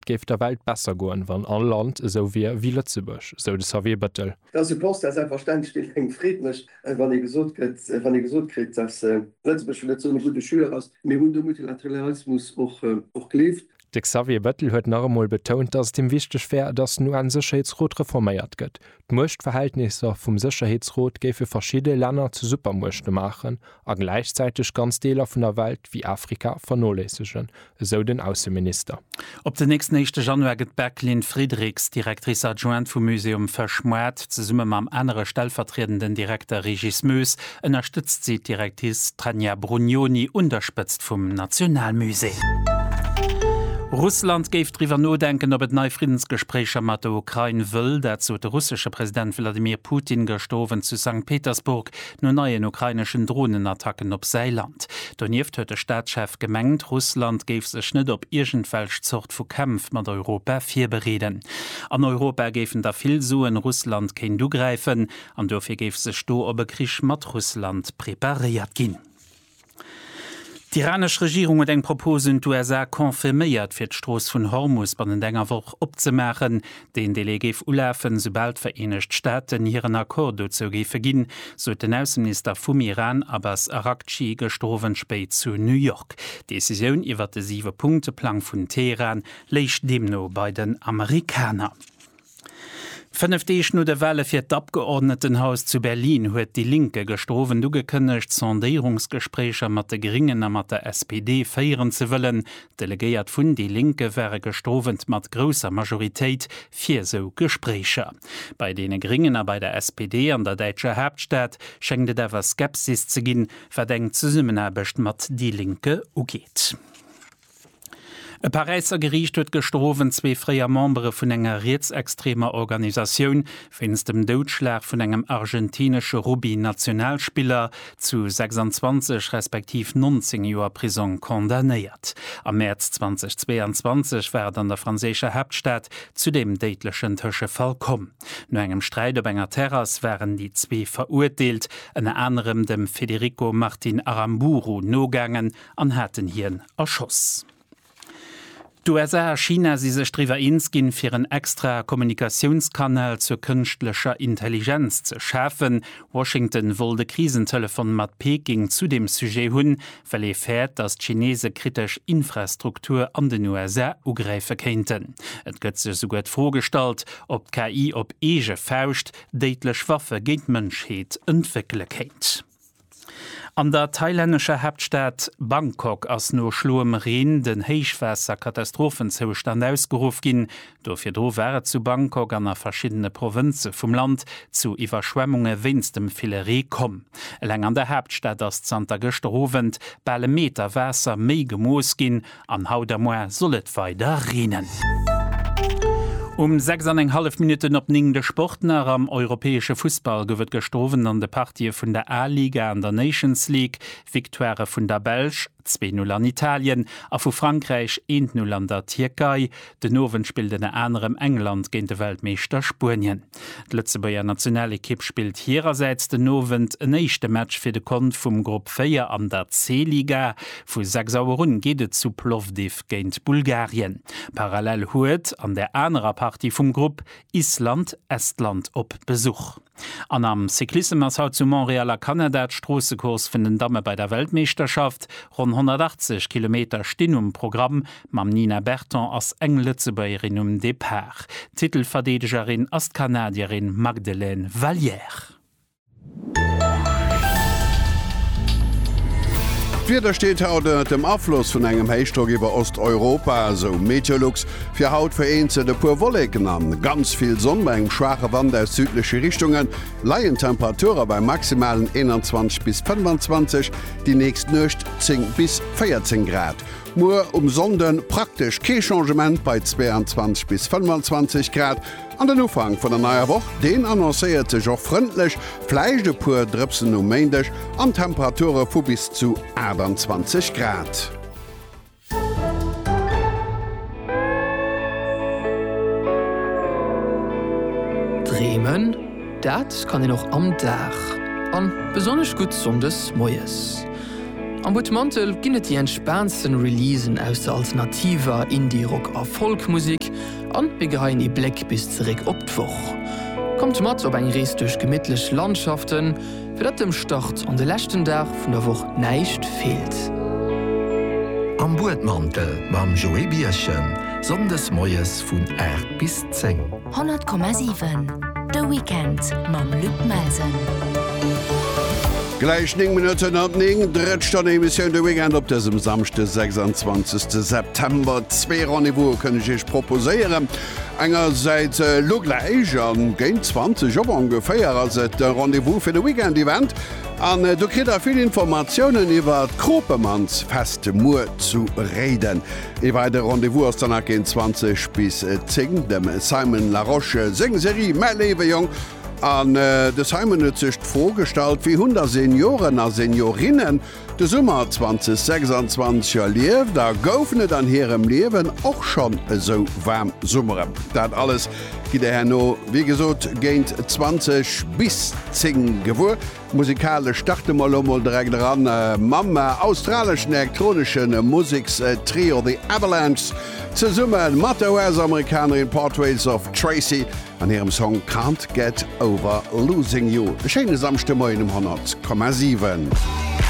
Et géif der Welt besser goen, wann all Land esou wier ewéi Lëtzebuerg, sou de Xavier Bëttel. Et ass e Constat, selbstverständlech, deen engem Freed mécht, wann ee gesot gëtt, wann ee gesot kritt, datt Lëtzebuerg vun net esou engem gudde Joueur ass. Mir hunn de Multilateralismus och gelift. De Xavier Bëttel huet nach emol betount, datt et him wichteg wär, datt den UN-Sécherheetsrot reforméiert gëtt. d'Muechtverhältnisser vum Sécherheetsrot géife verschidde Länner zu Supermuechte maachen a gläichzäiteg ganz Deeler vun der Welt, wéi Afrika, vernoléissegen, esou den Ausseminister. Op den nächsten éischte Januar gëtt d'Bècqueline Friedrichs, Directrice adjointe vum Muséum Fësch Moirt, zesumme mam anere stellvertriedenden Direkter Régis Moes ënnerstëtzt si d'Directice Tania Brugnoni un der Spëtzt vum Nationalmusée. Russland géif driwwer nodenken, ob et nei Friddensgespréicher mat der Ukrain wëll. Dat sot de russesche President Wladimir Putin gëschter Owend zu Sankt Petersburg no neien ukraineschen Dronenattacken op säi Land. Donieft huet de Staatschef gemengt, Russland géif sech net op iergendwelch Zort vu Kämpf mat Europa virbereeden. An Europa géifen da vill soen, Russland kéint ugräifen. An duerfir géif sech do op e Krich mat Russland preparéiert ginn. D'iranesch Regierung huet eng Propos un d'USA confirméiert, fir d'Strooss vun Hormus bannent enger Woch opzemaachen. Deen Delai géif ulafen, soubal d'Vereenegt Staaten hiren Accord dozou géife ginn, sot den Ausseminister vum Iran Abbas Araghchi gëschter Owend spéit zu New York. D'Decisioun iwwert de Siwe-Punkte-Plang vun Teheran léich deemno bei den Amerikaner. Fënnef Deeg no de Wale fir d'Abgeordnetenhaus zu Berlin huet déi Linke gestrawent ugekënnegt, Sondéierungsgespréicher mat de Gringen a mat der SPD féieren ze wëllen. D'Delegéiert vun déi Linke ware gestrawent mat grousser Majoritéit fir esou Gespréicher. Bei deene Gringen a bei der SPD an der däitscher Haaptstad schéngt et awer Skepsis ze ginn, wat eng Zesummenaarbecht mat déi Linke ugeet. E Paräisser Geriicht huet gëschter Owend zwee fréier Membere vun enger rietsextremer Organisatioun wéinst dem Doudschlag vun engem argentinesche Rugby-Nationalspiller zu 26 respektiv 19 Joer Prisong condamnéiert. Am Mäerz 2022 war et an der franséischer Haaptstad zu deem déidlechen Tëschefall komm. No engem Sträit op enger Terrass waren déi zwee Verurteelt ënner anerem dem Federico Martin Aramburu nogaangen, an haten hien erschoss. D'USA a China si sech driwwer eens ginn, fir en extra Kommunikatiounskanal zur kënschtlecher Intelligenz ze schafen. Washington wollt e Krisentelefon mat Peking zu deem Sujet hunn, well ee fäert, datt d'Chinese kritesch Infrastruktur an den USA ugräife kéinten. Et gëtt sech souguer d'Fro gestallt, ob d'KI op eege Fauscht déidlech Waffe géint d'Mënschheet entwéckele kéint. An der thailännescher Haaptstad Bangkok ass no schloem Reen den Héichwaasser-Katastrophenzoustand ausgeruff ginn. Do virdru war et zu Bangkok an a verschiddene Provënze vum Land zu Iwwerschwemmunge wéinst dem ville Ree komm. Eleng an der Haaptstad ass zanter gëschter Owend bal e Meter Waasser méi gemooss ginn An haut a moar soll et weider reenen. Um 6 an eng hallef Minutten op 9 de Sport nach. Am europäesche Fussball gouf et gëschter Owend an de Partië vun der A-Liga an der Nations League Victoirë vun der Belsch, 2, 0 an Italien, a vu Frankräich, 1, 0 an der Tierkei. Den Owend spillt ënner anerem England géint de Weltmeeschter Spuenien. D'Lëtzebuerger Nationalekipp spillt hirersäits den Owend en éischte Match fir de Kont vum Grupp 4 an der C-Liga. Vu 6 Auer un geet et zu Plovdiv géint Bulgarien. Parallel huet an der anerer Partie vum Grupp Island Estland op Besuch. An am Cyclissem ass haut zu Montréal a Kanada d'Stroossecourse vun den Damme bei der Weltmeeschterschaft. Ronn 180 Kilometer stinn um Programm. Mam Nina Berton ass eng Lëtzebuergerin um Depart. Titelverdeedegerin ass d'Kanadierin Magdelaine Valliere. D'Wieder steet haut ënnert dem Afloss vun engem Héichdrock iwwer Osteuropa, esou Meteolux. Fir haut vereenzelt e puer Wolleken an ganz vill Sonn bei engem schwaache Wand aus südleche Richtunge leien d'Temperature bei maximalen 21 bis 25, déi nächst Nuecht 10 bis 14 Grad. Muer um Sonnde praktesch kee Changement bei 22 bis 25 Grad an den Ufank vun der neier Woch, deen annoncéiert sech och frëndlech, vläicht e puer Drëpsen um Méindeg an Temperature vu bis zu 28 Grad. Dreemen, dat kann een och am Dag, an besonnesch gutt Sonndes moies. Am Butmantel ginn et déi entspaantsten Releasen aus der alternativer, Indie-, Rock a Folk-Musek, an mir geheien ee Bléck bis zeréck op d'Woch. Kommt mat op eng Rees duerch gemittlech Landschaften. Fir datt dem Start an de leschten Dag vun der Woch näischt feelt. Am Buedmantel mam Joé Birchen, Sonndes moies vun 8 bis 10. 100,7 De Weekend mam Luc Melsen. Gläich 9 Minutten mat 9, drëtt Stonn Emissioun de Weekend op dësem Samschde 26 September. Zwee Rendez-vouse kënn ech Iech proposéieren. Engersäits elo gläich a géint 20 Auer ongeféier ass et de Rendez-vous fir de Weekend Event an do kritt der vill Informatiounen iwwer d'Kropemannsfest muer zu Réiden. Ee weidere Rendez-vous ass dann nach géint 20 bis 10 dem Simon Larosche seng Serie Mäi léiwe Jong an de Simon huet sech d'Fro gestallt, Wéi hunn da Senioren a Seniorinnen De Summer 2026 erlieft a goufen et an hirem Liewen och schonn esou waarm Summeren. Dat alles gitt Dir herno, wéi gesot, géint 20 bis 10 gewuer. Musikalesch starte mer elo mol direkt eran mam australeschen elektronesche Musekstrio The Avalanches zesumme mat der US-Amerikanerin Portraits of Tracy an hirem Song Can't Get Over Losing You. E schéine Samschdemoien um 100,7.